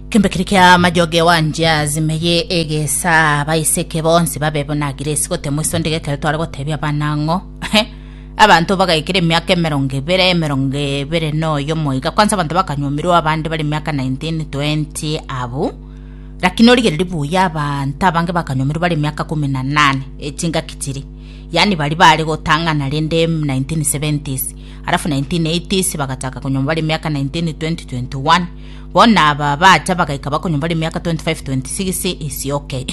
Kembe kiri kia majoge wanjia zimeye egesa abaiseke bonsi babe buna giresi gotemwa isonde gekero tware gotebia bana ng'o abanto bagaikire emiaka emerongo ebere emerongo ebere noyo moiga kwanza abanto bakanywomirwa abande bari emiaka 19 20 abu lakini origereri buya abanto abange bakanywomirwa bari emiaka kumi na nane echingaki chiri yani bari bare gotang'ana rende 1970s Alafu 1980s bagataka konywa bare miaka 19, 20, 21. Bona aba bacha bagaika bakonywa bare miaka 25, 26 isi okay.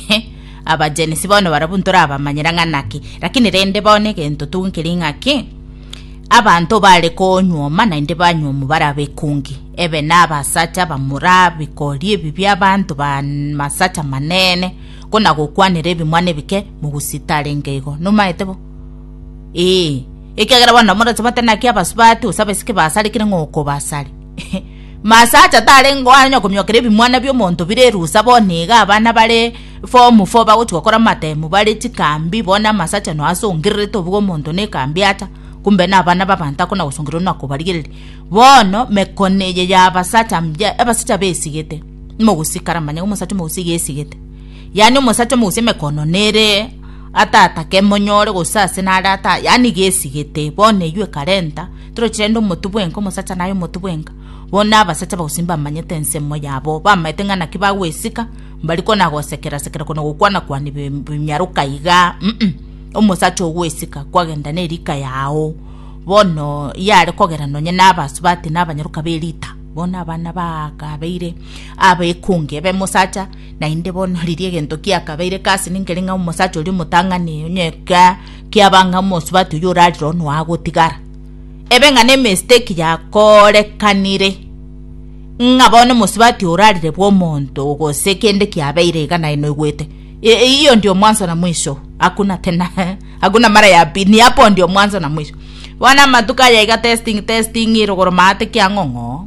aba jenisi bono barabu ntorabamanyera ng'a naki, lakini rende bono egento tu nkeri ng'a ki? Abanto bare konyuoma naende banyuomu bare abekungi. Ebe na abasacha abamura bikori ebi bi'abanto ba masacha manene, kona gokwanera ebimwana ebike mogusita arenge igo. Nomaete bo? Ee, ekiagera bono namoratomete naki abasubati gose abaiseke baasarekire ng'a okobasare. Masacha tarenge koara onye komiokera ebimwana bi'omonto bire erusa bono iga abana bare form four bagochia gokora amatemu bare chikambi bono amasacha no asongererete obuga omonto na ekambi acha kumbe na abana b'abanto akona gosongererwa na kobarigereria. Bono mekone eye ya abasacha mbuya abasacha besigete mogosikara manya omosacha omogusii gesigete. Yaani omosacha omogusie emekono nere Atatake monyore gose ase nare ata, yaani gesigete. Bono eywo ekarenta, toroche rende omotu bwenka, omosacha naye omotu bwenka. Bono na abasacha bagosi mbamanyete ensemo yabo, bamaete ng'a naki bagwesika, mbari kona gosekera sekera kona gokwana kwana bi- bimyaroka igaa, mm, omosacha ogwesika kwagenda ne rika yao. Bono yare kogera nonye na abasubati na abanyaroka be rita, bono abana bakabeire abekungi ebe mosacha. Naende bono riria egento kiakabeire kasi ninkere ng'a omosacha oria omotang'ani, onye kiaba ng'a omosubati oyio orare roro noe agotigara, ebe ng'a nemistake yakorekanire ng'a bono omosubati orarire bw'omonto gose kende kiabeire iga naye noigwete hiyo ndio mwanzo na mwisho hakuna tena hakuna mara ya pili ni hapo ndio mwanzo na mwisho bono amatuko aya iga testing testing rogoro maate kiang'ong'o.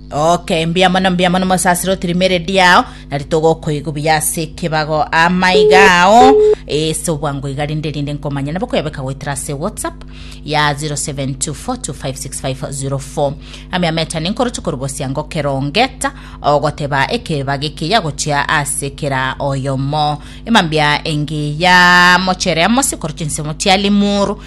Okay, mbuya mono, mbuya mono mosasiroti rimeredi yao, nari togokoigwa buya ase ekebago amaiga ao ase obwango iga rinde rinde nkomanya nabo koyabeka goetera ase whatsapp ya 0724256504 ame ametani nkoroche korubosia ngokerongeta ogoteba ekebago eke yagochia ase kera oyomo emambia engiya mochere amosi koroche nsemo chialimuru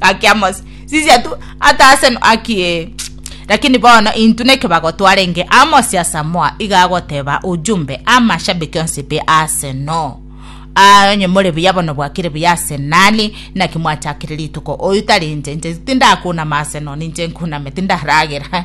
Gaki Amosi, sisia tu, ata ase no- Gaki, Ee. Lakini bono intwe nekebago twarenge Amosi asamoa iga agoteba ujumbe amashabiki onsi be Arsenal. Aa onye more buya bono bwakire buya ase nani naki mwachakire rituko oyu tari inche inche tindakunama Arsenal ninche nkuname tindaragera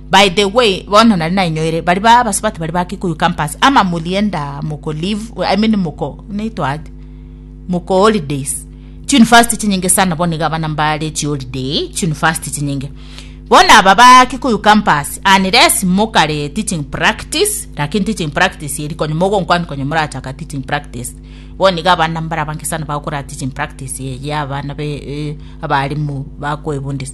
By the way, bono nari nainyoire, baria ba abasubati baria ba Kikuyu campus, ama morienda moko leave, I mean moko, naitwa aje? moko holidays. Chi university chinyinge sana bono iga abana mbare chi holiday, chi university chinyinge. Bono aba ba Kikuyu campus, unless mokare teaching practice, lakini teaching practice eri konye mogonkwana konye morachaka teaching practice. Bono iga abana mbare abange sana bagokora teaching practice eye ya abana be, eh, abalimu bakoebundisa.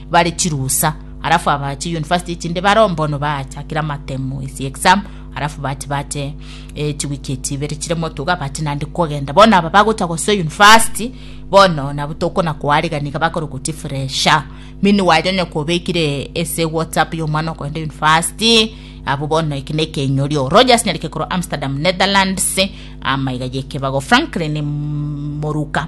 bare chirusa, alafu aba chi university chinde bare ombono bachakire amatemo ase exam alafu bache bache eh, chiwiki echi ibere chire motuga bache nande kogenda bono aba bagocha gose university bono nabo tokona koariga niga bakore goti fresha mini wanyanya kobekire ase whatsapp ya omwana okogenda university abo bono eki ne ekenyorio rogers nyarike korwa amsterdam netherlands amaiga yekebago franklin moruka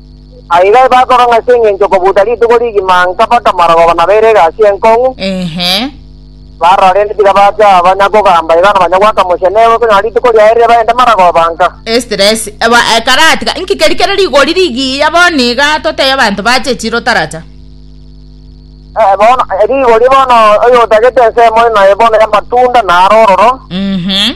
Aye iga ebasoro ng'a ase engencho kobuuta rituko rigima nkabaka marogoba na beire egasi enkong'u, Ehe. barora rende tiga bacha aba nyakogamba iga nonya goaka mochie nebe okonyora rituko riaye rire baende marogoba nka. Estress. Eba ekaratiga. Inki keri kere rigori rigiya bono iga totebie abanto bache echiro taracha. Eh, bono eh, rigori bono oyotagete ensemo ime bono y'amatunda naro ororo. Mhm.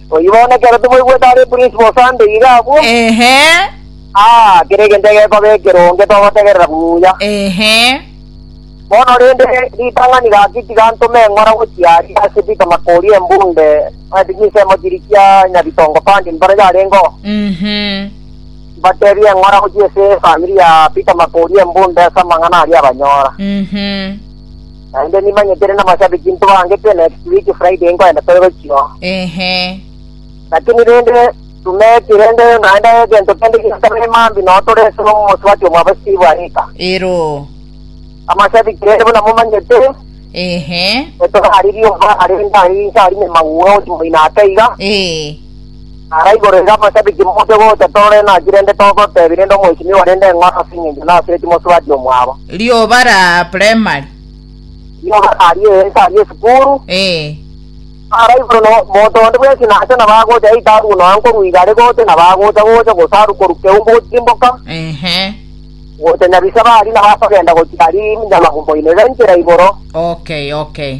Oyio bono ekero tomoigwete are principal Sunday iga abwo, Ehe. ah, kera egento egekoba ekeronge togotegerera buya. Ehe. Bono rende ritang'ani gaki tigantoma eng'ora gochia aria ase Peter Makori embunde ase chinsemo chiria chia Nyabitongo Pandi mbare yarengeo. Mhm. Mbatebie eng'ora gochia ase efamiri ya Peter Makori embunde ase amang'ana aria abanyora. Mhm. Naende nimanyetire namashabiki ntobaangete next week Friday nkoenda tore gochio. Ehe. Lakini rende tumeti rende naende egento kende giotabere mambi noo tore ase omosubati omwabo Steve Arika. Ero. Amashabiki rende buna momanyete, Ehe. etogari riomba rende ari inse ari nyamagwe oti moino ake iga, Eh. Ara igoro iga amashabiki moche gocha torore naki rende togotebi rende omoichimi owe rende eng'ora ase engencho nase eti mosubati omwabo. Rioba ra primary. Rioba raria ense aria esukuru. Ee. Ara igoro no motonde bwensi nacha na bagocha eita aruo noa nkorua igare gocha na bagocha gocha gose aru korwa keumbu gochimboka. Ehe. Gocha nyabisaba aria na bakogenda gochia aria nyamagumo ime iga inchera igoro. Okay okay.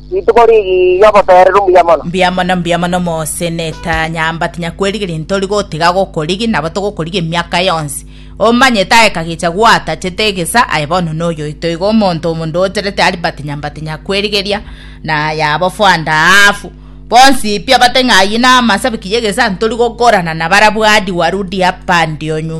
Rituko rigiya ogotoerera ombuya mono. Mbuya mono, mbuya mono moseneta nyamba tinyakwerigeria ntori gotiga gokorigi nabo togokorigi emiaka yonsi. Omanye taeka gecha gwatachete egesa aye bono noyoito igo omonto omonto ocherete Albert nyamba tinyakwerigeria na yabo fwanda aafu. Bonsi pi abate ng'a aye namasabi kiya egesa ntori gokorana nabarabwo hadi warudi hapa ndio nyuma.